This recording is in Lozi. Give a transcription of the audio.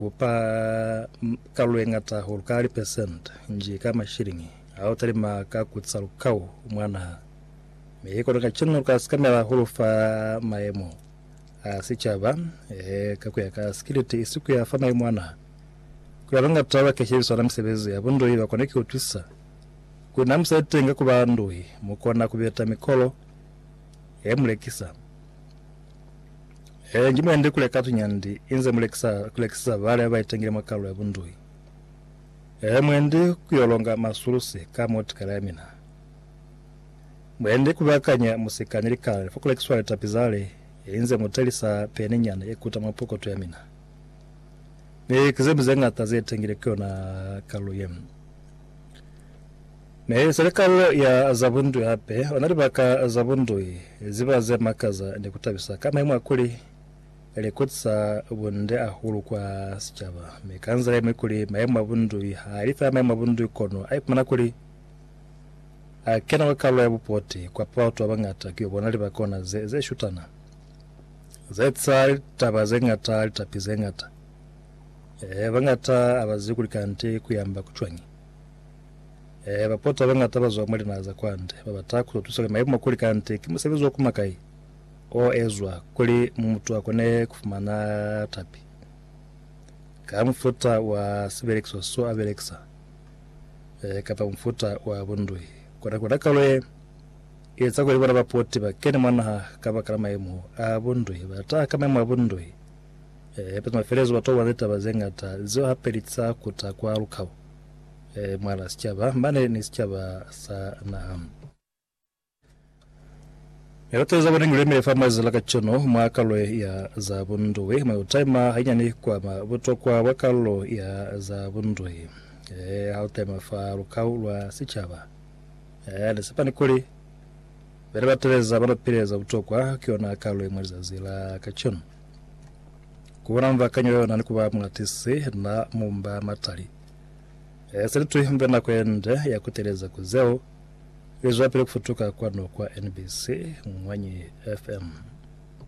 Ku pa kalulo ye ñata hahulu ka lipesente nji ka mashiliñi ha u talima ka ku ca lukau mwa naha, mi ki kono kacenu lu ka sikamela hahulu fa mayemo a sicaba, ehe, ka ku ya ka sikiliti isi ku ya fa mayemo a naha. Ku ya luñata ba keshebisana misebezi ya bunduhi, ba kona ki ku tusa kuli na mu sa iteñi ka ku ba nduhi, mu kona ku beta mikolo ye mu lekisa. He, ngi mwendi kule katu nyandi inze mulekisa kulekisisa bale baitengile mwa kalulo ya bunduhi. He, mwendi kuyo longa masulusi ka mwa tikala ya mina. Mwendi kubakanya musika ni likale fa kulekiswa litapi zale inze mutelisa peni nyana ye kuta mwa pokoto ya mina. Mi ki zemi zeñata zeitengile ku yona kalulo ye. Ne se li kalulo ya za bundui hape. Ona libaka za bundui ziba ze makaza ni kutabisa ka maimu a kuli, li kutisa bunde hahulu kwa sicaba, mi ka nzila yeñwi kuli maimu a bundui ha li feela maimu a bundui kono a ipumana kuli a kena kwa kalulo ya bupoti kwa pa batu ba bañata ki yo bona libaka ona ze, ze shutana, za etiza litaba ze ñata, litapi ze ñata. Ee, bañata ha ba zibi kuli kanti ku yamba ku cwañi. Eeha, bapota babañata bazwa mwa linaha za kwande babata kuzotusa kuli maimo a kuli kande ki musebezi wa kuma kai oezwa kuli mutu akone kufumana tapi ka mufuta wa sibelekiso so abelekisa e kapa mufuta wa bundui. Kona kona kalo ye ieza kuli bona bapoti bakene mwa naha kabakala maimo a bundui. Bataha ka maimo a bundui e peza mafelezo batokobana ni taba zeñata zeo hape litisa kuta kwa lukau. e mwala sicaba mane ni sicaba sa naha. Milato za bone ngulemile fa mazila ka cono mwa kalo ya za bundui mwa utaima hanyani kwama butokwa bwa kalo ya za bundui e ha utaima fa lukau lwa sicaba e ni sepani kuli bene ba teleza bano pileza butokwa kuyona kalo imwe lizazi la ka cono Kuona mbakanyo yona ni kuba mulatisi na mumba matali. E se litwi mbe nako yende ya kuteleza ku zeo lizwapili kufutuka kwanu kwa NBC Ngwanyi FM.